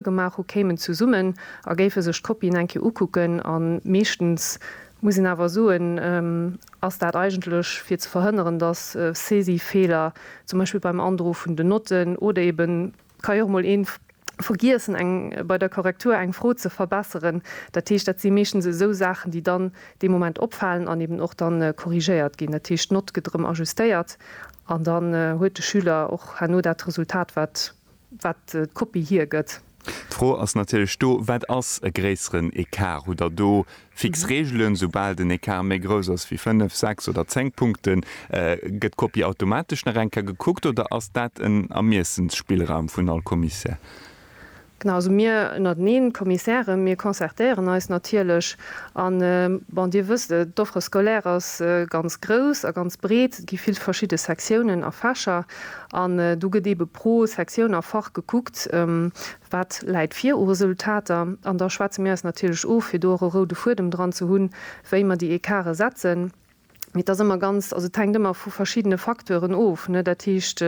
gemaach hu kéimen zesummen a géife sech d'Kopien eng Kéier ukucken an meeschtens muss een awer soen, ass dat eigentlech fir ze verhënneren, datt Saisifeeler zum Beispill beim Androe vun den Notten oder eben ka jo och mol een vergiessen eng bei der Korrektur eng Fro ze verbesseren, dat heescht dat si meeschtens esou Saachen déi dann dee Moment opfalen an eben och dann korrigéiert ginn, dat heescht d'Nott gëtt erëm ajustéiert an dann huet de Schüler och herno dat Resultat wat wat d'Kopie hiergëtt. D'Fro ass natierlech do, Wat ass e gréisseren Ecart? Hutt Der do fix Reegelen, Soubal den Ecart méi grouss ass wéi fënnef, sechs oder zéng Punkten, gëtt d'Kopie automatesch nach eng Kéier gekuckt oder ass dat en Ermiessensspillraum vun all Commissaire? Genau, also mir ënnerteneen, d'Kommissären, mir concertéieren eis natierlech. An bon, Dir wësst et, d'Offre scolaire ass ganz grouss a ganz breet. gi vill verschidde Sektiounen a Fächer an do gëtt eebe pro Sektioun a Fach gekuckt, wat läit vir u Resultater an da schwätze mir eis natierlech of, fir do och e roude Fuedem dran ze hunn, wéi mer déi Ecarte setzen. Mee et ass ëmmer ganz, also et hänkt ëmmer vu verschiddene Facteuren of, ne, dat heescht,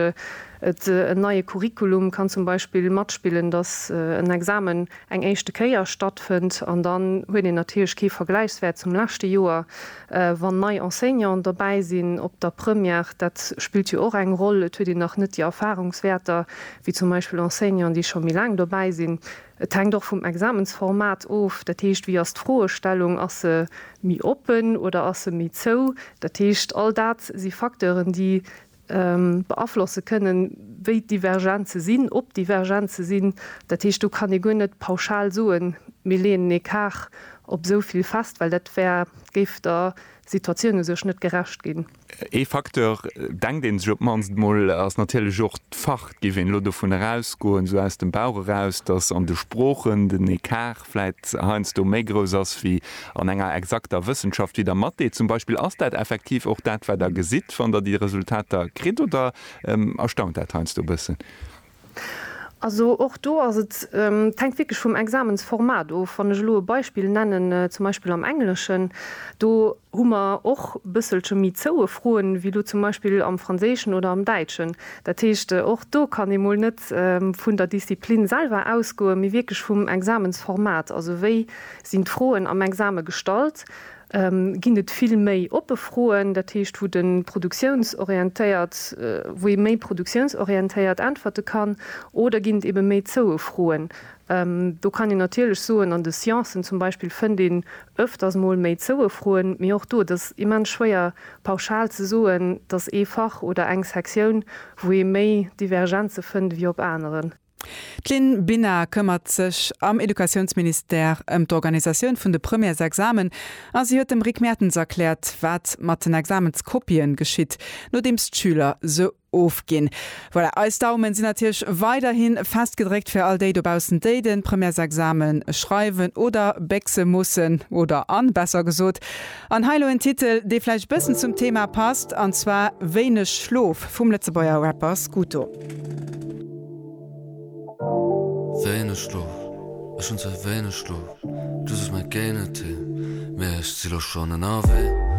et en neie Curriculum kann zum Beispill matspillen, dass en Examen eng éischte Kéier stattfënnt an dann huet een natierlech kee Vergläichswäert zum leschte Joer. wann nei Enseignanten dobäi sinn op der Première, dat spillt jo och eng Roll, et huet een nach net déi Erfahrungswäerter wéi zum Beispill Enseignanten, déi scho méi laang dobäi sinn. Et hänkt och vum Examensformat of, dat heescht, wéi ass d'Froestellung, ass se méi oppen oder ass se méi zou? Dat heescht, all dat si Facteuren, déi beaflosse kënnen, wéi d'Divergenze sinn, ob Divergenze sinn. Dat heescht, do kann ee guer net pauschal soen, mir leeën ee Quart op esou vill fest, well dat wär, géif der Situatioun u sech net gerecht ginn. Ee Facteur, denkt ee sech op d'mannst emol, ass natierlech och d'Fach. Et géif een elo dovun erausgoen, esou aus dem Bauch eraus, datt an de Sproochen den Écart vläit heiansdo méi grouss ass wéi an enger exakter Wëssenschaft wéi der Mathé zum Beispill. Ass dat effektiv och dat, wat Der gesitt, wann Der déi Resultater kritt, oder erstaunt dat heiansdo e bëssen? Also och do ass et, et hänkt wierklech vum Examensformat of. Wann ech elo e Beispill nennen, zum Beispill am Engleschen, do hu mer och bësselche méi zoue Froen, wéi elo zum Beispill am Franséischen oder am Däitschen. Dat heescht, och do kann ee mol net vun der Disziplin selwer ausgoen, mee wierklech vum Examensformat, also wéi sinn d'Froen am Exame gestallt, ginn et vill méi oppe Froen, dat heescht, wou de produktiounsorientéiert, wou ee méi produktiounsorientéiert äntwerte kann, oder ginn et ebe méi zoue Froen, Do kann een natierlech soen, an de Sciencen zum Beispill fënnt een öfters mol méi Zouefroen, mee och do, et ass immens schwéier pauschal ze soen, dass ee Fach oder eng Sektioun, wou ee méi Divergenze fënnt wéi op aneren. D'Lynn Binar këmmert sech am Educatiounsministère ëm d'Organisatioun vun de Premièresexamen a si huet dem Rick Mertens erkläert, wat mat den Examenskopien geschitt, nodeems d'Schüler se ofginn. Voilà, eis Daumen sinn natierlech weiderhin fest gedréckt fir all déi dobaussen, déi den Premièresexamen schreiwen oder béchsen mussen, oder an, besser gesot. An hei elo en Titel, dee vläicht bëssen zum Thema passt, an zwar Wéineg Schlof vum Lëtzebuerger Rapper Scuto. Wéineg Schlof, ech hunn ze wéineg Schlof, du sos mer géi net hin, mee ech si lo schonn ënnerwee.